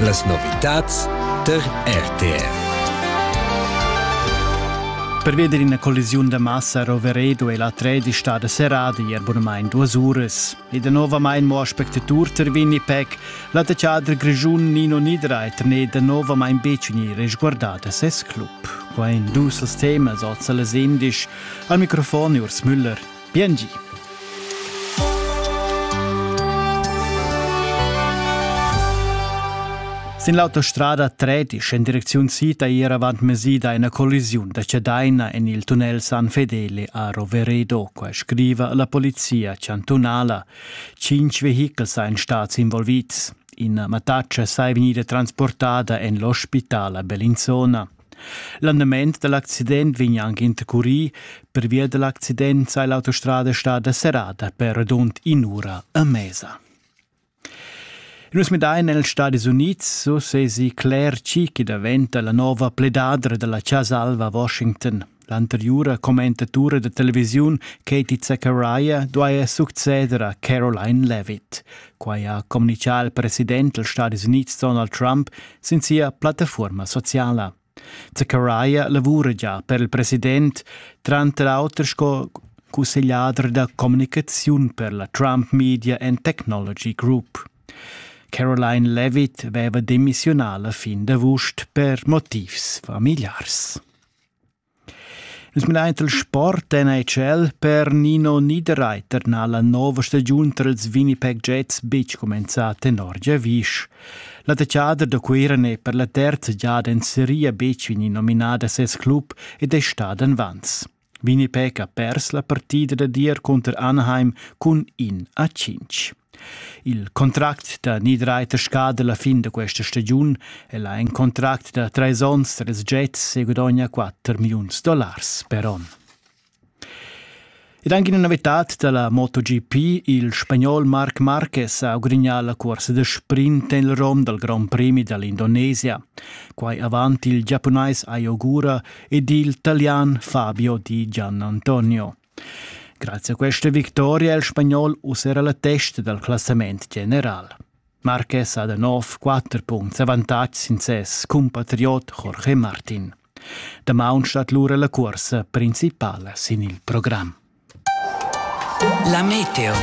Las novitads tar RTR. Per veder ina collisiun da massa a Roveredo è la 13 stada serrada ier bunamain duas uras. E danovamain mo spectatur tar Winnie Peck, la teater grischun Nino Niederreiter n'è danovamain betg resguardà da ses club. Qua in dus temas oz las indisch. Al microfon Urs Müller. Biengi. Sin l'autostrada Tretisch en direcziun Sita ir avant mesida ina collisiun da Cedaina en il tunnel San Fedele a Roveredo, qua scriva la polizia chantunala. Cinque vehichels ein stati involvids. Ina mattaccia sai vegnida transportada en l'ospitala Bellinzona. L'andament da l'accident vegn anche intercurì. Pervia da l'accident sei l'autostrada stada serrada per redund in'ura a mesa. Nus midain els Stadis Unids, so sesi Claire Cheeky daventa la nova pledadra della Casa Alva a Washington. L'anteriura commentatura da televisiun Katie Zachariah duaja succeder a Caroline Levitt. Quai ha communitgà il president dals Stadis Unids Donald Trump sin sia plattafuorma sociala. Zachariah lavura già per il president, tranter auter sco cussegliader da communicaziun per la Trump Media and Technology Group. Caroline Levitt aveva demissionà la fin d'avust per motivs familiars. Es menaint il sport NHL per Nino Niederreiter n'ha la nouva stagiun trals Winnipeg Jets betg cumenzà tenor giavüsch. La techader da Cuira n'è per la terza giada in seria betg vegni nominada a ses club ed è stada invans. Winnipeg ha pers la partida da dir cunter Anaheim cun in a 5. Il contract da Niederreiter scada la fin da questa stagiun e la en contract da trais onns tres jets segudogna 4 milliuns dollars per onn. Ed anche una novità della MotoGP, il spagnol Marc Marquez ha ogrignà la corsa da sprint nel rom dal Grand Prix dell'Indonesia. Quai avant il giapunais Ayogura ed il italian Fabio di Gianantonio. Grazie a questa victoria è il spagnol uss era la testa dal classament general. Marquez ha da nov quatter puncts avantatg sin ses cumpatriot Jorge Martin. Damaun stat lura la cursa principala sin il programm. La meteo.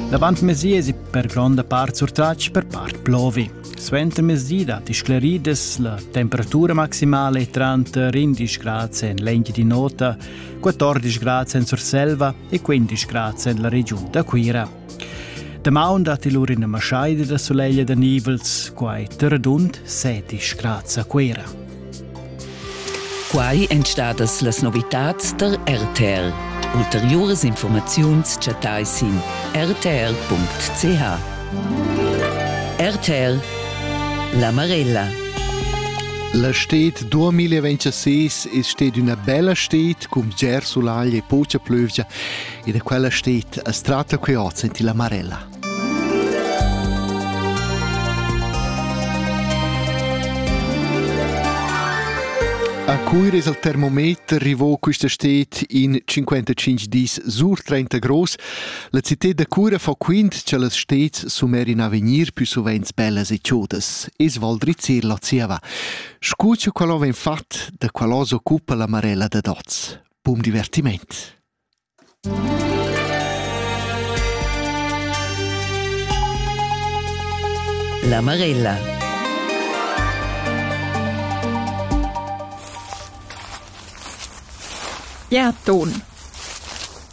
Davant mesies per gronda part surtratg per part plovi. Suenter mesi datti scleridas la temperatura maximale tranter 11 grad en l'engine di nota 14 grad en Surselva e 15 grad en la regiun da Cuira. Damaun dat il ur ina maschaida da sulegl da nivels, quai terdund 17 grad a Cuira. Quai èn stadas las novitads tar RTL. Ulteriuras informaziuns chattai sin rtl.ch. RTL La Marella La stet 2026 è stet una bella stet cum ger sulaglia e pocia plövgia e da quella stet a strata che ho senti la Marella. A Cuir es al termometer rivò quista stet in 55 dis sur 30 gross, La cità da cura fa quint che las stets sumer in avegnir più sovents bellas e chodas, es Val Drizir la zieva. Scu cha quella vegn fat, da quella s'occupa la Marella da Doz. Bum divertiment! La Marella Gerd Dohn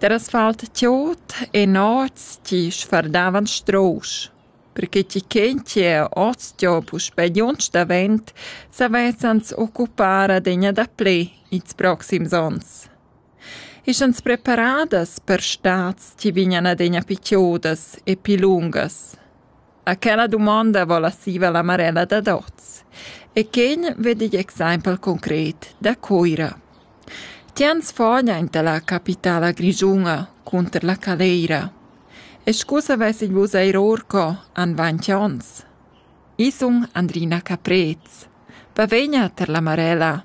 Der asfalt tiot e noz chi sfardavan strusch. Perche chi chen chi è oz giò puspè giunch davent, s'avessans occupar adegna daplè ils proxims ons. Ischans preparadas per stats chi vignan adegna pichiodas e pi lungas? Aquella dumonda vola siva la Marella dad oz. E quegn vedi igl exempel concret da Cuira. Tians fogn aint la capitala grischuna cunter la Caleira. E scu savessin vus eir orco an vant ons? Isun Andrina Caprez. Bavegna tar la Marella.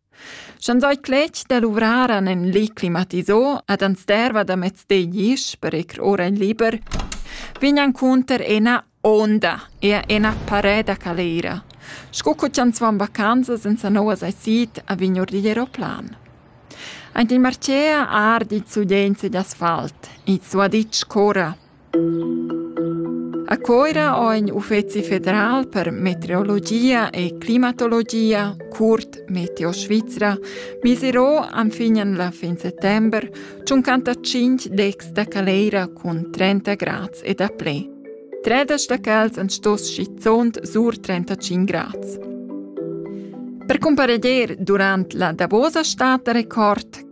Sch'ans oi cletg da luvrar an ün li climatisò ed ans derva da mez deglisch per ir ora in liber, vegn encunter ena onda e ena parè da caleira, sco co chi ans van vacanzas in sa nouva saisit a vign our digl eroplan. Aint il marcea ardi il sulegl sugl asfalt, il suaditsch corra. A Coira ho ign uffezi federal per meteorologia e climatologia, curt Meteo Svizra, misirò anfignan la fin settember tschuncantacinc decs da caleira cun 30 grads e daplè. Tredas da cals an stos schizunt sur 35 grads. Per cumpareglier durant la davosa stat da record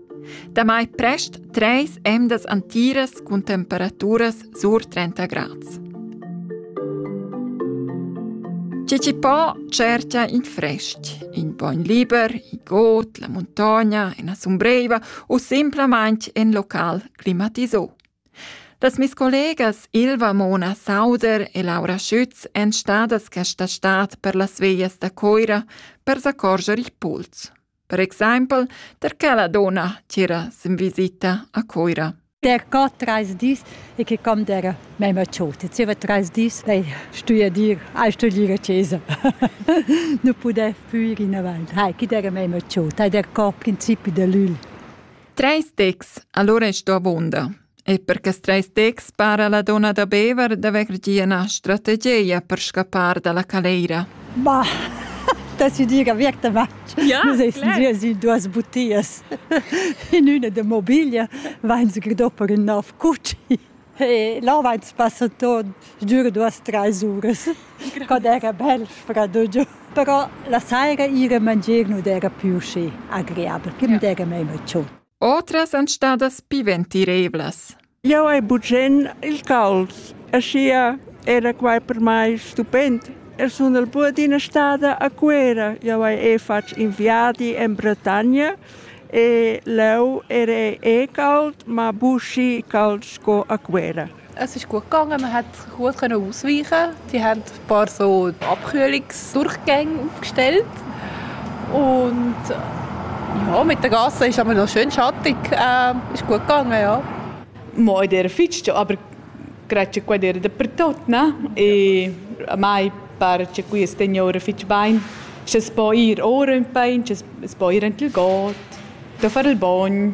Damai prest treis emdas antiras cun temperaturas sur 30 grads. Chi ci po certia in fresc, in bogn liber, in got, la montagna, in assombreiva u simplamain in local climatisò. Das mis collegas Ilva Mona Sauder e Laura Schütz èn stadas questa stad per las veias da Coira per s'accorger il puls. Per exaimpel der che la donna tira sin visita a Coira. Der geht drei dis e che kam der mema chote. Zieva drei dis lei stuia dir, hai studiere cesa. nu pudev più in avanti. Hai, chi der mema chote. Hai der cor principi de lül. Treis decs, allora sto avonda. E per quest treis texts para la donna da Bever d'haver gia ina strategia per scappar dalla caleira. Bah, da si dir avertamatt. Ja, si duas butias. In üna de mobiglia vain se gridò per ün nov cucci. E là vain spassa tot, dura duas, treis uras. Quando era bel freddo giù. Però la saira ire mangier non era più schi agreabel, che mi era meno ciò. Otras èn stadas pi ventiravlas. Jau hai bugen il cals, aschia era quai per mai stupend. E sun el pur d'ina stada a Cuera. Jau hai e fatg in viadi en Bretagna e leu era e cald, ma buschi cald sco a Cuera. Es ist gut gegangen. Man hat gut können ausweichen. Die haben ein paar so Abkühlungsdurchgänge aufgestellt. Und ja, mit der Gasse ist aber noch schön schattig. Äh, ist gut gegangen, ja. Mo in der Fitsch aber grazie qua dir dappertut, ne? E a mai pare che qui signore fitch bain, c'è spoir ora un pain, c'è spoir ent il got, da fare il bagno.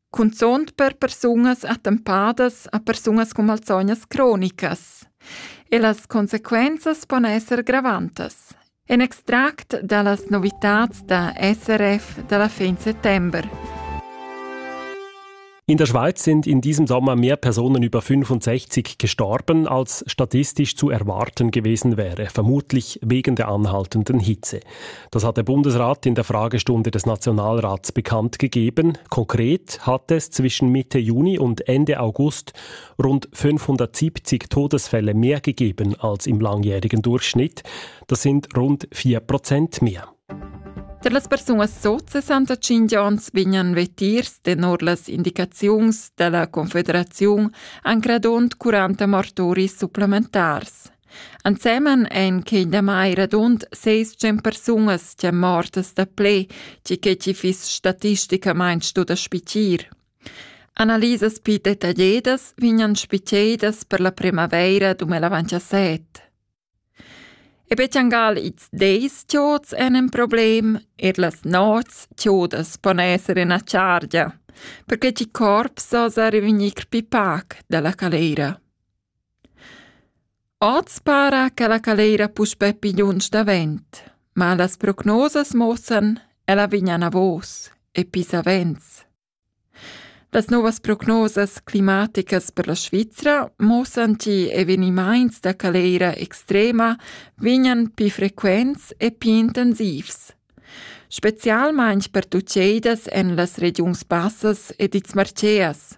cunzunt per persunas attempadas a persunas cun malsognas cronicas. E las consequenzas pon esser gravantas. En extract da las novitats da SRF dalla fin September. In der Schweiz sind in diesem Sommer mehr Personen über 65 gestorben, als statistisch zu erwarten gewesen wäre, vermutlich wegen der anhaltenden Hitze. Das hat der Bundesrat in der Fragestunde des Nationalrats bekannt gegeben. Konkret hat es zwischen Mitte Juni und Ende August rund 570 Todesfälle mehr gegeben als im langjährigen Durchschnitt. Das sind rund 4 Prozent mehr. Per las persunas sot 65 ans vegnan vetirs tenor las indicaziuns della Confederaziun an gradond 40 martoris supplementars. Ensemen ein quei damai radund seis tschient persunas ch'ein mortas daplè che quei chi fiss statisticamain stu da spitir. Analisas pli detagliadas vegnan spitgedas per la primavaira 2017. E betjangal ils deis chiots en in problem, er las nots chiodas pon esser ina chargia, perché ti corps osa revenir pli pac dalla calera. Oz para che la caleira puspè pigliuns davent, ma las prognosas muossan ch'ella vegn anavos e pli savens. Las novas prognosas climaticas per la Svizra muossan che evenimaints da caleira extrema vegnan pli frequents e pli intensivs. Specialmaing pertucheidas èn las regiuns bassas ed ils Marceas.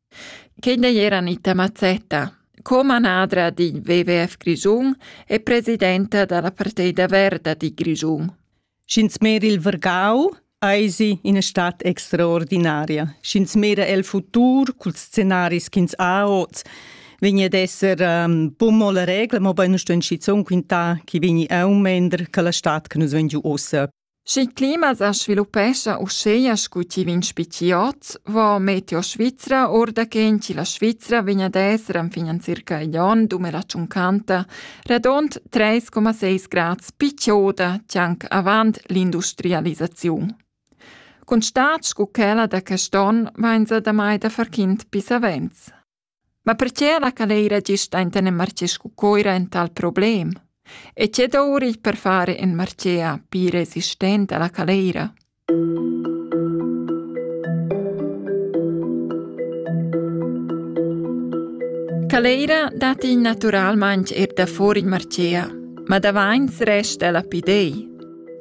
Quei n'ei era Anita Mazzetta, co-manadra d'in WWF Grischun e presidenta dalla Parteida Verda di Grischun. Sch'ins mera il Vergau, eisi ina stad extraordinaria. Sch'ins mera el futur culs scenaris ch'ins ha oz, vegni ad esser um, bun mo la regla, mobein sto in schizun quintar chi vegni aumender che la stad che nus vegn giu ossa. Sch'il clima sa sviluppescha uschea scu chi vegn spetgi hoz, vo Meteo Svizra our da quint chi la Svizra vegn ad esser enfin circa igl on 2050 radund 3,6 grads pi chioda chi anc avant l'industrialisaziun. Cun stat scu quella da quest on vainsa damai da far quint pis savens. Ma perche la caleira gist enten in marché scu Coira en tal problem? E che dour il per fare in marchea pii resistent a la caleira? Caleira dat in naturalmaing eir da fuor il marchea, ma davains resta la pidei.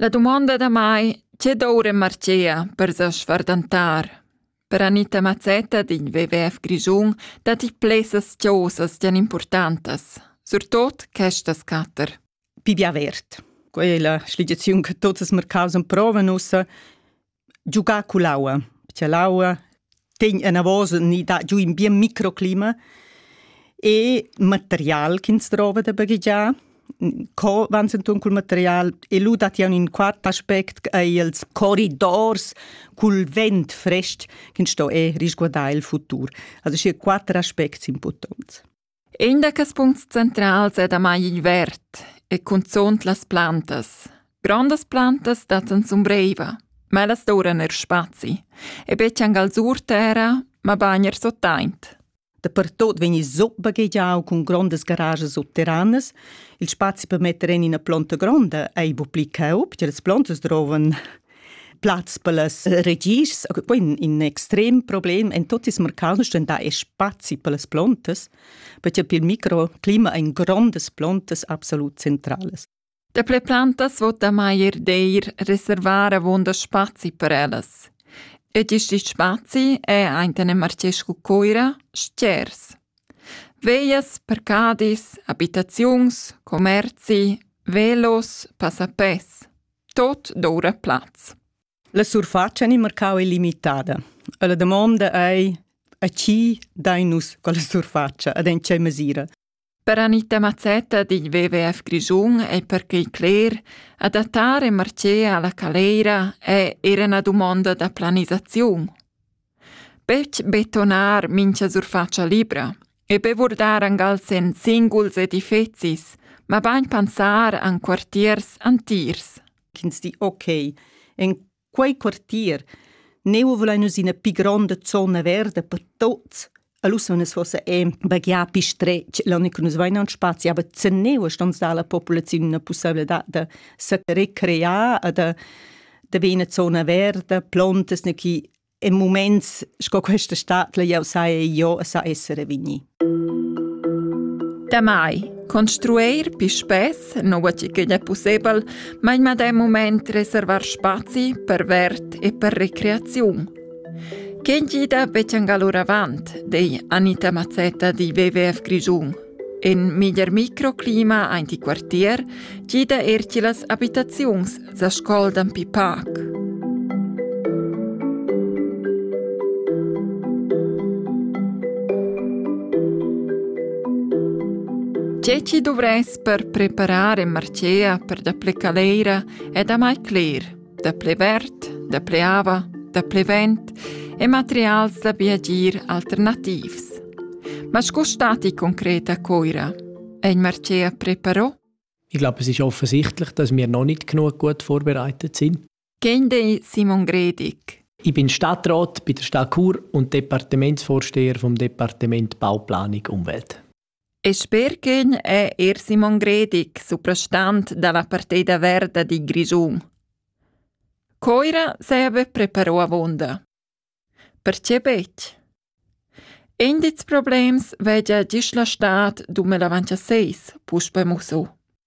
La dumonda da mai tge doura marchea per sa sfardantar. Per Anita Mazzetta d'in WWF Grischun datti plessas chosas gian importantas, surtot questas quatter. Pibi avert. Quella è la sligiazione che tuts els mercaus provan ussa giugar cull'aua, perché l'aua ten anavos ni dà giù in bien microclima e material ch'ins drova da baghegiar. Co vans inturn cul material e lu dat jau in quart aspect ch'ei els corridors cul vent frestg ch'ins sto e risguardar il futur. Also schi quatter aspects importants. In da quels puncts centrals è damai il verd e cunzunt las plantas. Grondas plantas dattan zumbreiva, ma las doran er spazi. E betg angal alzur terra, mabain er sottaint. Dapertot vegn il zup baghegiau cun grondas garages subterranas. Il spazi per metter en ina plonta gronda ei bu pli caub, che las plontas drovan. Platz per las regis, in, in extrem problem en tot ils mercants da spazi per las plantas, perché per il microclima ein grondas plantas absolut centrales. Daple plantas vot maier d'eir reservar avonda spazi per ellas. Ed isti spazi è ein Marcescu Coira stgers. Veias, parcadis, abitaziuns, commerzi, velos, passapes. tot doura plaz. La surfatscha ni marcau ei limitada. E la damonda ei a chi dai nus quella surfatscha ed en tgei mesira? Per Anita Mazzetta digl WWF Grischun è perquei cler, adattare marcea alla caleira è era una domanda da planisaziun. Betg betonar mincha surfatscha libra e be vurdar angals en singuls edifezis, mabain pensar en quartiers antiers. Ch'ins di ok, en quei quartier neu vulain nus ina pi gronda zona verda per tuts Alussonas fossa è baghià pi stretg, l'onn che nus vain en spazi, aber zerneu stons dar la populaziun una possibilità da se recrear e da da be ina zona verda, plontas, che in moments sco questa stat, la jau sai io, sa essere vigni. Damai construir pi spess, nua che è possibel, ma in medem moment reservar spazi per vert e per recreaziun. Quén gida betschangal oravant, dei Anita Mazzetta di WWF Grischun. In miglier microclima ein ti quartier gida er ti las abitaziuns sa scoldan pi pac. Che ci dovress per preparar e marcea per da plecaleira è da mai cler. da ple verd, da ple ava, da ple vent e materials da viagir alternativs. Ma sco stati concret a Coira? Ein Marcea preparò? Ich glaube, es ist offensichtlich, dass wir noch nicht genug gut vorbereitet sind. Gende Simon Gredig. Ich bin Stadtrat bei der Stadt Chur und Departementsvorsteher vom Departement Bauplanung Umwelt. E sper ch'ün è eir Simon Gredig, suprastant da la Partida verda di Grischun. Coira s'haja be preparò avuonda. Perche betg? Indits problems vegia gist la stad dumel avancha seis, puspe musso.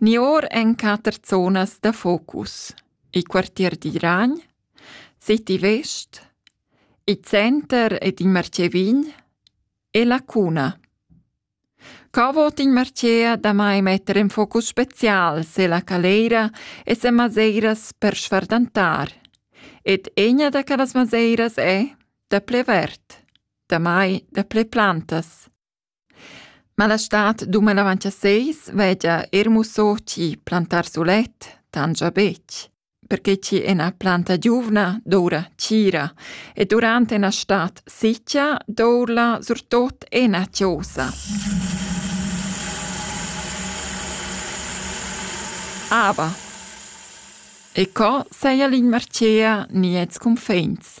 Ni or ein quater zonas da focus: il quartier d'Iragn, City West, il center ed il Marcevin e la cuna. Co vot in Marcea damai metter en focus special se la caleira e se maseiras per sfardantar? Ed egna da quellas maseiras è da ple verd, damai da ple plantas. Ma la stad duman avant cha seis vegia eir musso chi plantar sulet tangia betg, perche chi ena planta giuvna doura tgira e durant ena stad sitgia dourla surtot ena chiosa. Ava. E co saja l'inmarchea gnits cunfins?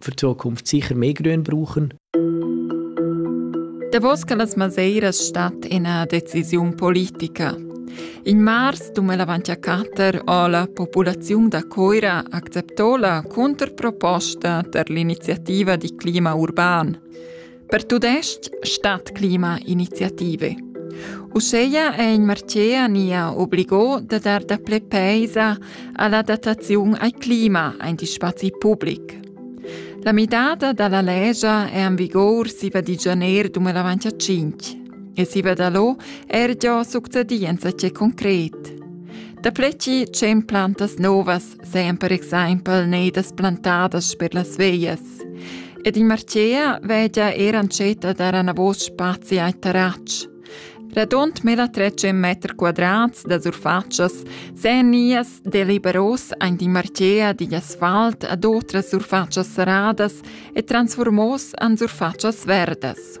für die Zukunft sicher mehr Grün brauchen. Davos che las Maseiras stat ina decisiun politica. In mars 2014 ho la populaziun da Coira acceptò la controproposta per l'iniziativa di clima urban. Per tudestg Stadtklimainitiative. Uscheia è in Martier nia obligò da dar daple peisa all'adattaziun al clima ein di spazi public. La midada dalla legia è an vigor siva di janer 2005 e siva da lo er già succedienza c'è concret. Da pleci c'en plantas novas seien per exempel neidas plantadas per las veias Ed il Marcea vegia er antscheta dar anavos spazi ai terratsch. Radund meda trecem meter quadrats da surfatschas sen nias deliberos ein di Marcea digl asfalt ad otras surfatschas serradas e transformos an surfatschas verdas.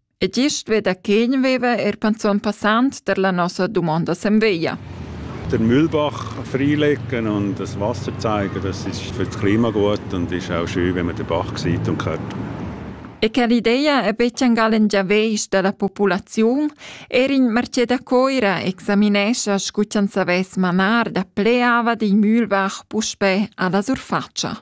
E gist veda ch'ign veva er panzun passant per la nossa dumonda semveglia. Der Mühlbach freilecken und das Wasserzeiger, das ist für das Klima gut und ist auch schön, wenn man den Bach sieht und hört. E che l'idea è betg angal in giaveisch della populaziun, er in Merceda Coira examinescha scu c'an savess manar da pleava di Mühlbach puspè alla surfaccia.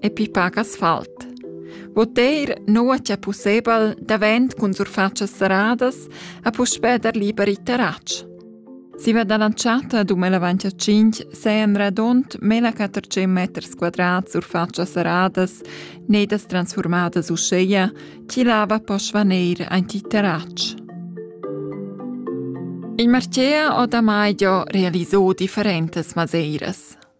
e pi pac asfalt. Voter nua che pussebel davent cun surfatschas serradas a puspè dar liber i terratsch. Si va da lanciata ad umela 25 seien radont mela 400 meters quadrat surfatschas serradas, nedas transformadas uscheia, chi lava po svaneir anti terratsch. Il Marchea o da Maidio realisò differentes maseiras.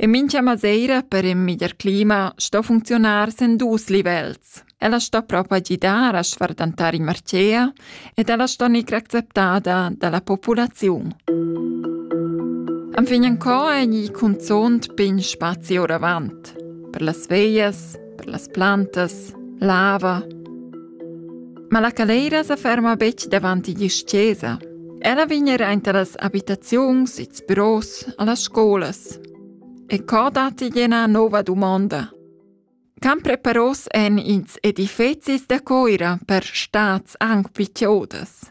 E mincha maseira per ün miglier clima sto funcziunar sen dus livels. Ella sto propa gidar a sfardantar in marcea ed ella sto gnir acceptada da la populaziun. Enfin en co è gni cunzont pin spazi oravant. Per las veias, per las plantas, lava. Ma la Caleira sa ferma betg davant igl chesa. Ella vegn era enta las abitaziuns, ils büros, allas scolas. E co dat igl ena nova dumonda. Can preparos en ins edifecis da coira per stats anc pli chiodas?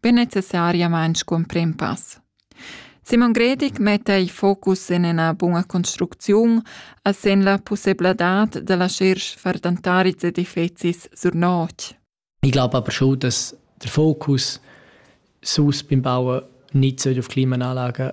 be necessariamain scumprim pass. Simon Gredig metta il focus en ina buna construcziun a sen la pussebladad da lascher far tantarids edifizis sur notg. Ich glaube aber schon, dass der Fokus sus beim Bauen nicht auf Klimaanlagen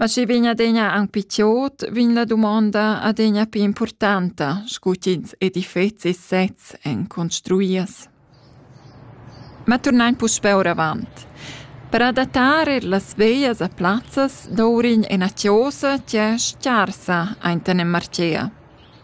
Ma schi vegn adegna aunc pli tiot, vegn la dumonda adegna pli impurtanta, scu ch'ins edifezi e sezs èn construias. Ma turnain puspè oravant. Per adattar eir las veglias a plazzas dovrign ena chiosa chi è scarsa aint en en marchea.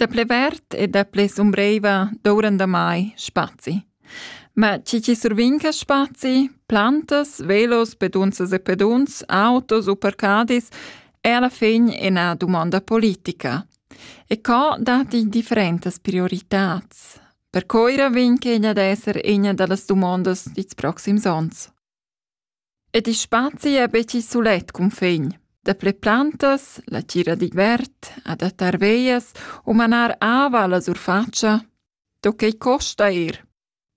Daple vert e daple sumbreiva douran damai spazi. Ma chi chi survinca spazi, plantas, velos, pedunzas e pedunz, autos u parcadis, è alla fin ina domanda politica. E co dati differentas prioritats? Per coira vinca egna d'esser egna dallas domandas dits proxims ons. Ed il spazi è betg sulet cunfin. Dapli plantas, la tgira digl verd, adattar veias u manar ava alla surfatscha. Do quei costa ir.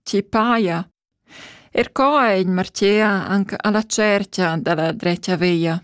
Ti paia. Er co è in martia anche alla cerchia dalla dretga veia.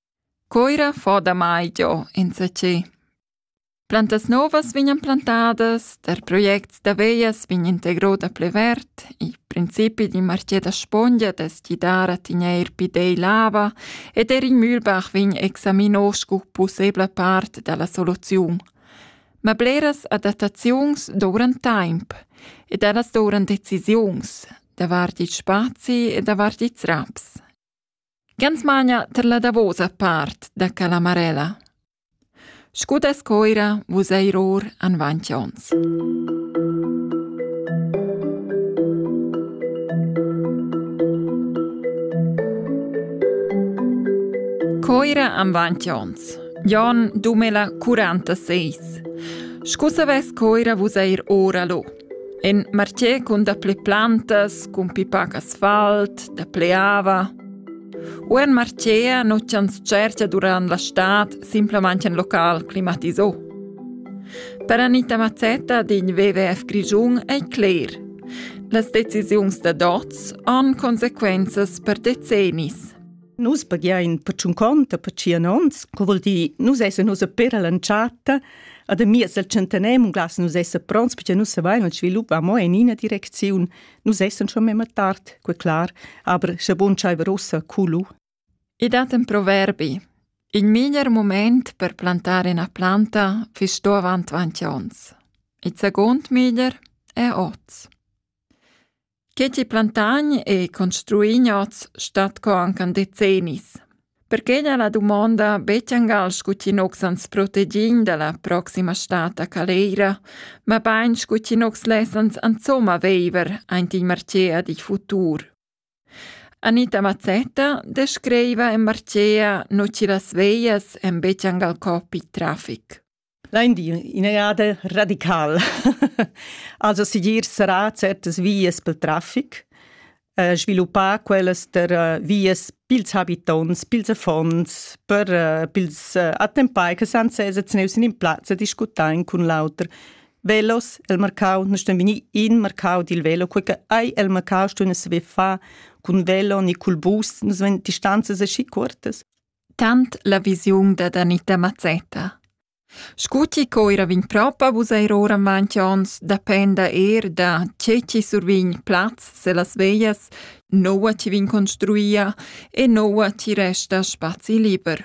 Coira fo damai giò insatgè. Plantas novas vegnan plantadas, tar projects da vejas vegn integro da plü verd, il principi d'ün marchè da spongia dess gidar a tegnair pü dei l'ava ed eir il Mühlbach vegn examino scu pussebla part da la soluziun. Ma bleras adattaziuns dovran taimp ed ellas dovran decisiuns davart il spazi e davart ils raps. Gans magna tar la davosa part da Calamarella. Scu dess coira vus eir our anvant ons. Coira anvant ons. Jon Dumela 46. Scu savess coira vus eir ora lo. In martier cun dapli plantas, cun pipac asfalt, dapli ava. U in martier nu tschantschercha durant la stad simplamaing ün local climatisà. Per Anita Mazzetta din WWF Grischun ei cler. Las decisiuns da dots han consequenzas per decennis. Nus paghiain per tschun conta per tschien ons, co vuol dir, nus esa nus a per all'entschatta, ad a miez del centenem un glas nus esa pronts, perché nus savain, il svilup va mo in ina direcziun, nus essan schon memma tard, que clar, aber sche bun schaiver ussa culu. I dat en proverbi, il miglier moment per plantare una planta fisch sto avant 20 ons. Il second miglier è oz. Queti plantagn e construin oz stat co anche en decennis. Perché n'è la domanda betg angal scu chi nox ans protegin da la proxima stata caleira, ma bain scu chi nox lessans insomma veiver aint il Marcea di futur. Anita Mazzetta descriva in Marcea no chi las veias en betg angal coppi trafic. Lain dir ina jada radical. also sigir sarà certas vias pel traffic, eh, sviluppar quellas der eh, vias pils habitonts, pils affons, per eh, pils eh, attempai che san sesa zneus in plazza discutain cun l'auter. Velos, el marcau, non ston venir in marcau dil velo, quei che ai el marcau ston saver fa cun velo ni cul bus, nos ven distanzas aschi cuortas. tant la visiun dad Anita Mazzetta. Scu chi coira vegn propa vus eir oramaunt ons dapenda eir da che chi survign plaz se las veglias, noua chi vegn construia e noua chi resta spazi liber.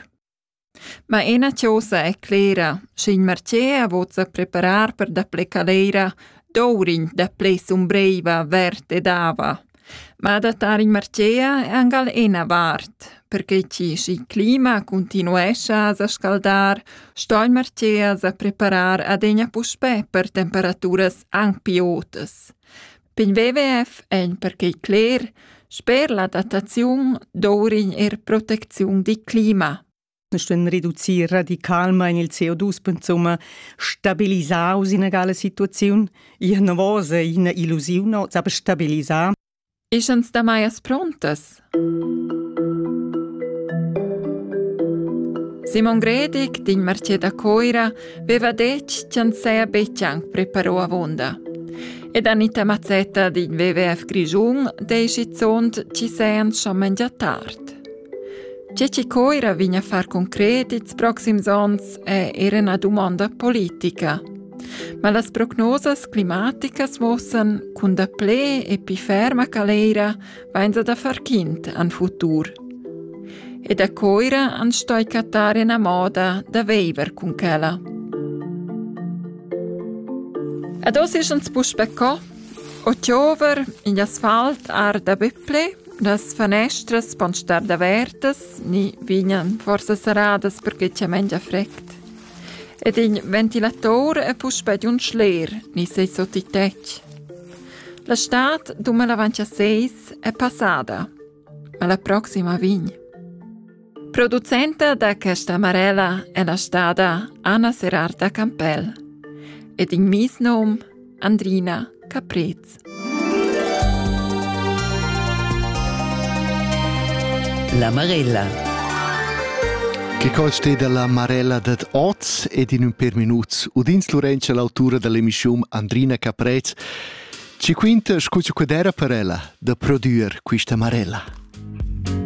Ma ena chosa è clera, sch'in marcea vozza preparar per da ple calera, dourin da ple sumbreiva vert ed ava. Ma adattar in marcea è angal ena vart, perche chi schi clima cuntinuescha a sa scaldar, sto il marcea sa preparar adegna puspè per temperaturas anc pi otas. Pigl WWF egn perquei cler, sper l'adattaziun dovrign er protecziun dil clima. stuein reducir radicalmein il CO2 insomma stabilisar ina egala situaziun innovosa ina illusiun no, aber stabilisar Ist uns da Meiers prontes? Simon Gredig din Martier da Coira veva detg ch'en seia betg anc preparò avonda. Ed Anita Mazzetta din WWF Grigiun dei schizunt ci sean schon mengia tard. Tge che Coira vegn a far concret ils proxims onns è era ina dumonda politica. Ma las prognosas climaticas muossan cun daplè e pi ferma caleira vainsa da far quint an futur. E da Coira an stoi cattar ena moda da veiver cun quella. Ad os is ans puspe co, o chiover in asfalt ar da Böpple Las fanestras pon star davertas ni vegnan forsa serradas perquei ch'ei mengia frect. Ed in ventilator è puspei di un schler ni sei sut il tetg. La stad dumelavant a seis è passada. Alla proxima vegn. Producenta da questa amarella è la stada Anna Serarta Campell ed in mies num Andrina Caprez. La Marella. Che col ste dalla Marella dad oz ed in ün per minuts udins Lorenza l'autura dall'emischium Andrina Caprez ci quinta scu cu d'era per ella da prodüer quista Marella.